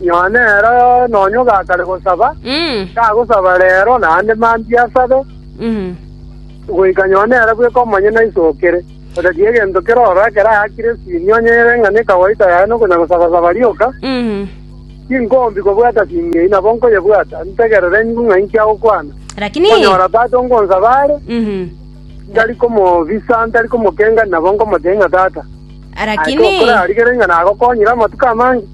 Nyoo nero nonya ogakare gosaba, tagosaba reero naende mambia asabe, goika nyoo nere bweka omonyene aisokere. Otatiga egento keroro ekero ayakire esini onye ere ng'a nekawaita yaye nokonyagosaba-saba rioka, tinkombi kobwata sini eyio, nabo nkoyebwata, ntegerere nyigwe ng'a inki agokwana. Nkonyora tata ongonsaba are, ntari komobisa, ntari komokengania, nabo nkomoteebia ng'a, Tata, naete okore arigere ng'a nagokonyire amatuko amange.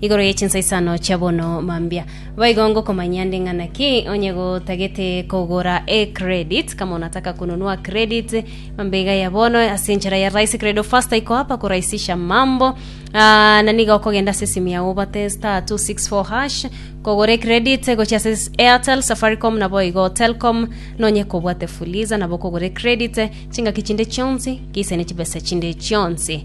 Igoro ye chinsaisano chia bono mambia. Boigo ngokomanyia nde ng'a naki onye gotagete kogora e credit, kama onataka kununua credit, mambia iga ya bono ase enchera ya Rise Credo Faster ikoapa korahisisha mambo. Ah, na nigo okogenda ase esimu yao obate star 264 hash, kogora e credit gochia ase s- Airtel, Safaricom na boigo Telcom, nonye kobwate Fuliza nabo okogora e credit, chingaki chinde chionsi, geise ne chibesa chinde chionsi.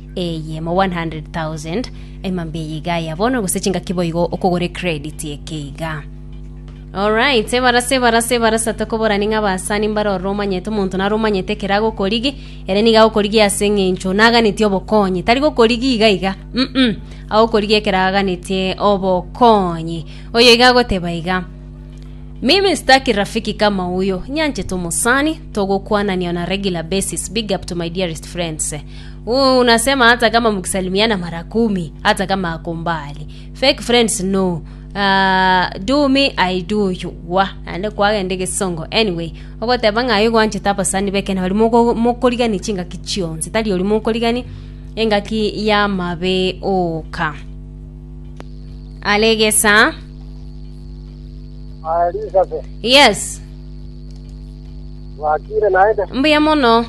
Eye mo 100,000 ema mbeyi iga ya bono gose chingaki boigo okogore credit eke iga. Alright, ebarasa ebarasa ebarasa tokoborani ng'a basani mbare orore omanyete omonto nare omanyete ekero agokorigi ere niga agokorigi ase eng'encho naganeti obokonyi tari gokorigi iga iga mm, -mm. agokorigi ekero aganetie obokonyi oyo iga agoteba iga Mimi sitaki rafiki kama huyo, nyanchete omosani, togokwanania on a regular basis, big up to my dearest friends. Ooh unasema hata kama mkisalimiana mara kumi hata kama ako mbali fake friends no Ah, do me i do you wa naende kwagenda egesongo anyway ogoteba ng'a aye gwanchete abasani bekene bari moko- mokorigania chingaki chionsi tari ori mokorigania engaki y'amabe oka aregesa Ah, Elizabeth, yes bwakire naende? mbuya mono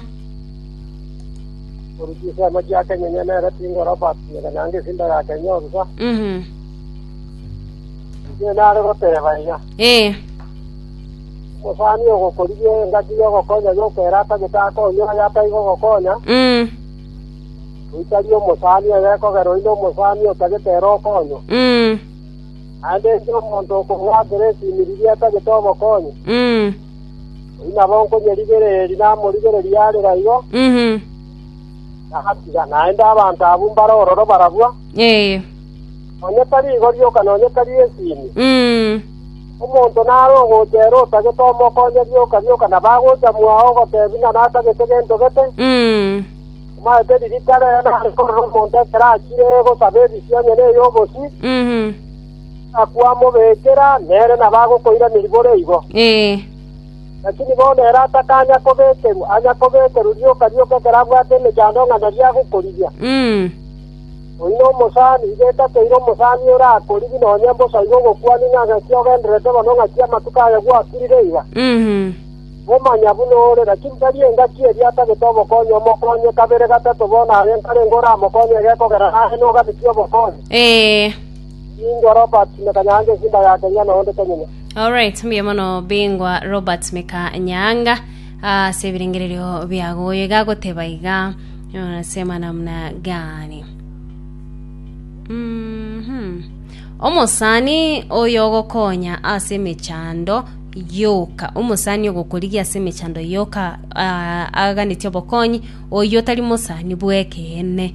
Oruchi ase amache ya kenyenye nere tingoroba kiega naende esinda ya kenye orusa. Mhm. Inche nare goteba iga. Eh. Omosani ogokorigia engaki y'ogokonya yokera atagete akonye oyo ataigo gokonya, Mm. oitari omosani oyo ekogera oino omosani otagete ere okonywa. Mm. Naende inche omonto okong'watera esimiriria etagete obokonyi, Mm. Oyio nabo nkonyerigereria namorigererie arere igo, Mhm. nagatiga naende abanto abwo mbare ororo barabwo, Ee. nonya tari igo rioka nonya tari esini. Mm. Omonto nare ogocha ere otagete omokonye rioka rioka na bagocha mwao ogotebi ng'a natagete gento gete, Mm. omaete ririta rere nare korora omonto ekero achire gosaba ebisi onye ney'obosio, Mhm. Tigakwamobekera, nere nabo agokoiraneria bore igo. Lakini bono ere atakanya kobekerwa, anya kobekerwa rioka rioka ekero abwate emechando ng'a nario agokorigia. Oino omosani, igo etakeire omosani ore akorigi nonya mbosa igo ogokwania ng'a ng'aki ogendererete bono, ng'aki amatuko aya gwakirire iga. Omanya buna ore, lakini tari engaki eria atagete obokonyi, omokonye kabere gatato bono aye nkarenge oramokonye egekogera naye nogabitia obokonyi. Bingwa Robert me kanyaanga esimba ya Kenya na onde tonyenya. Alright, mbuya mono Bingwa Robert Meka Nyaanga ase ebirengererio biago. Oyo iga agoteba iga, unasema namna gani? Mhm. Omosani oyo ogokonya ase emechando yoka omosani ogokorigia ase emechando yoka ah, aganetie obokonyi oyo otari mosani bw'ekeene